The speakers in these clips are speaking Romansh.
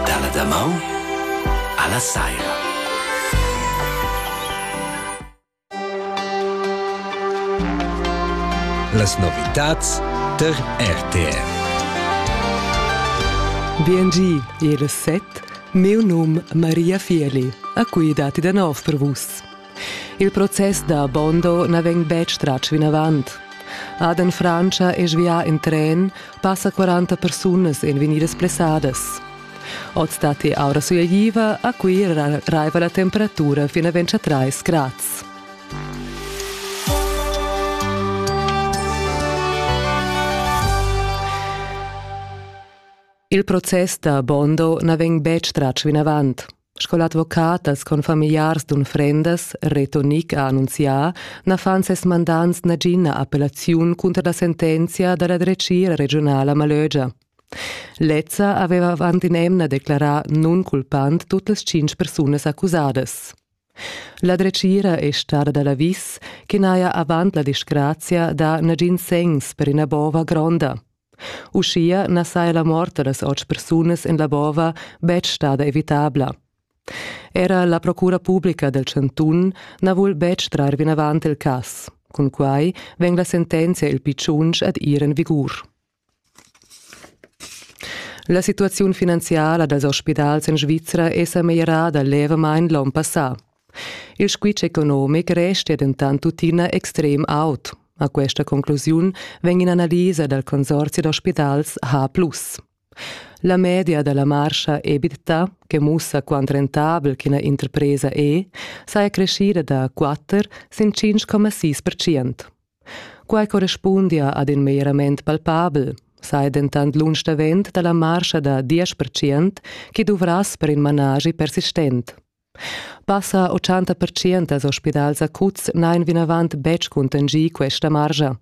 Dalla damaun alla saira. Las novitads ter RTR. Biengi, il set, meu num Maria Fieli, a cui dati da nov per vus. Il process da Bondo na vegn betg tratg vinavant. Aden Frantscha è svià en tren, passa 40 persunas èn vegnidas blessadas. Oz datti aura sulegliva, a Cuira raiva la temperatura fin a 23 grads. Il process da Bondo na vegn betg tratg vinavant. Sco l'advocat dals confamigliars d'unfrendas Reto Nick ha annunzià, na fan ses mandants nagina appellaziun cunter la sentenzia da la dretgira regiunala Malögia. Lezza aveva avant in'emna declarà nunculpant tut las tschintg persunas accusadas. La dretgira è stada da l'avis che n'haja avant la disgrazia dà nagin segns per ina bova gronda. Uschia na saja la mort da las otg persunas en la bova betg stada evitabla. Era la procura publica dal chantun na vul betg trar vinavant il cas. Cun quai vegn la sentenzia il pitschunch ad ir en vigur. La situaziun finanziala dals ospidals en Svizra è sa meglierada levamain l'onn passà. Il squitsch economic restia dentant tuttina extrem aut. A questa conclusiun vegn in'analisa dal consorzi d'ospitals H+. La media da la marscha EBITDA, che mussa quant rentabel ch'ina interpresa è, saja creschida da 4 sin 5,6%. Quai correspundia ad in meglierament palpabel, sai dentant lunsch davent da la marscha da 10% che duvrass per in managi persistent. Passa 80 pertschient ospidals acuts n'hain vinavant betg cuntanschì questa margia.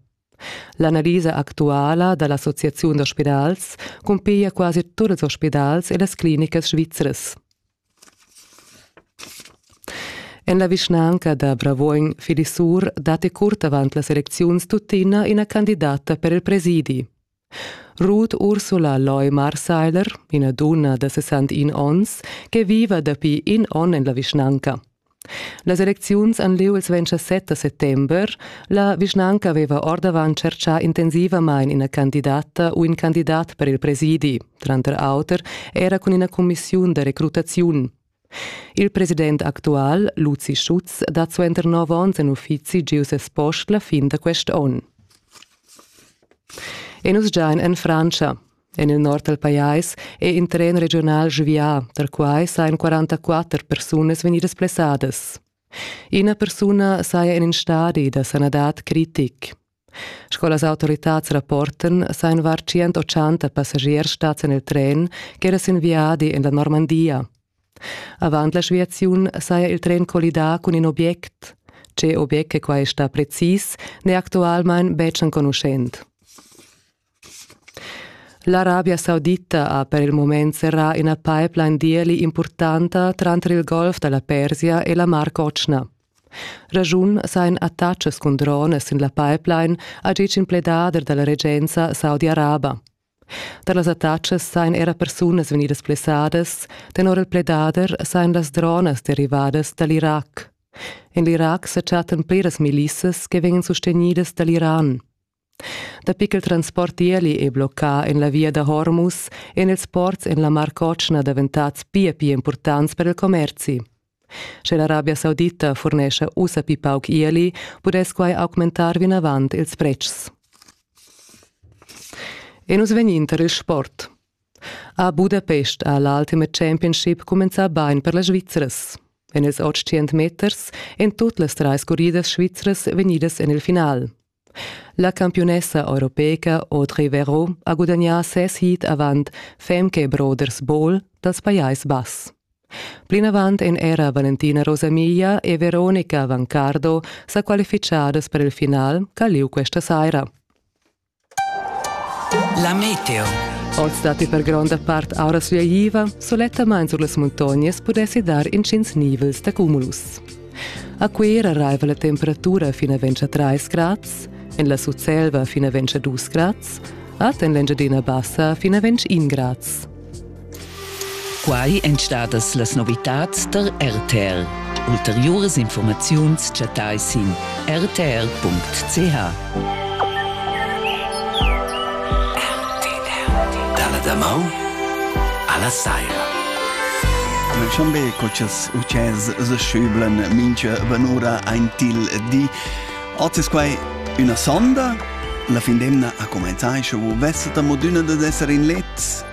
L'analisa actuala da l'associaziun d'ospidals cumpiglia quasi tut ils ospidals e las clinicas svizras. En la vischnanca da Bravuogn Filisur datti curt avant las elecziuns tuttina ina candidata per il presidi. Ruth Ursula Leumarseiler, ina dunna da 61 onns che viva dapi in onn en la vischnanca. Las elecziuns han lieu il 27 settember. La vischnanca aveva ordavant tschertgà intensivamain ina candidata u in candidat per il presidi, tranter auter era cun ina cumissiun da recrutaziun. Il president actual, Luzi Schutz, dat suenter nov onns en uffizi giu ses post la fin da quest onn. E nus giain en Frantscha. En il nord dal pajais è in tren regional svià, dal quai sajan 44 persunas vegnidas blessadas. Ina persuna saja en in stadi da sanadad critic. Sco las autoritads rapportan, sainvar 180 passagiers stats en il tren ch'era sin viadi en la Normandia. Avant l'aviaziun saja il tren collidà cun in object. Tge object che quai sta precis, n'è actualmain betg enconuschent. L'Arabia Saudita ha per il mument serrà ina pipeline d'ieli impurtanta tranter il Golf da la Persia e la Mar Cotschna. Raschun sajan attacas cun drones sin la pipeline, ha ditg in pledader da la regenza saudi-araba. Tar las attacas sajan era persunas vegnidas blessadas, tenor il pledader sajan las dronas derivadas da l'Irac. En l'Irac sa chattan pliras milissas che vegnan sustegnidas da l'Iran. Dapi ch'il transport ieli è bloccà en la via da Hormus èn ils ports en la Mar Cotschna daventads pia pia impurtants per il commerzi. Sche l'Arabia Saudita furnescha ussa pli pauc ieli, pudess quai augmentar vinavant ils pretschs. E nus vegnin tar il sport. A Budapest ha l'Ultimate Championship cumenzà bain per las Svizras. En ils 800 meters èn tut las trais curridas svizras vegnidas en il final. La campiunessa europeca Audrey Verreau ha gudagnà ses heat avant Femke Brothers Bowl dals Pajais Bass. Plinavant èn era Valentina Rosamiglia e Veronica Vancardo sa qualifichadas per il final ch'ha lieu questa saira. La meteo. Oz datti per gronda part aura sviaiva, sulettamain sur las muntognas pudessi dar intgins nivels da cumulus. A Cuera raiva la temperatura fin a ventscha 3 grads, en la Sutselva fin a ventscha 2 grads, ad en l'Engiadina Bassa fin a ventg 1 grads. Quai èn stadas las novitads tar RTR. Ulteriuras informaziuns chattai sin rtr.ch. Dalla damaun alla saira. Nel Chambé cotschas utschels seschüblan mincha vanura ein til di. Oz es quai üna sonda. La fin d'emna ha comenzà e sche vus vessat amo d'üna dad esser in let,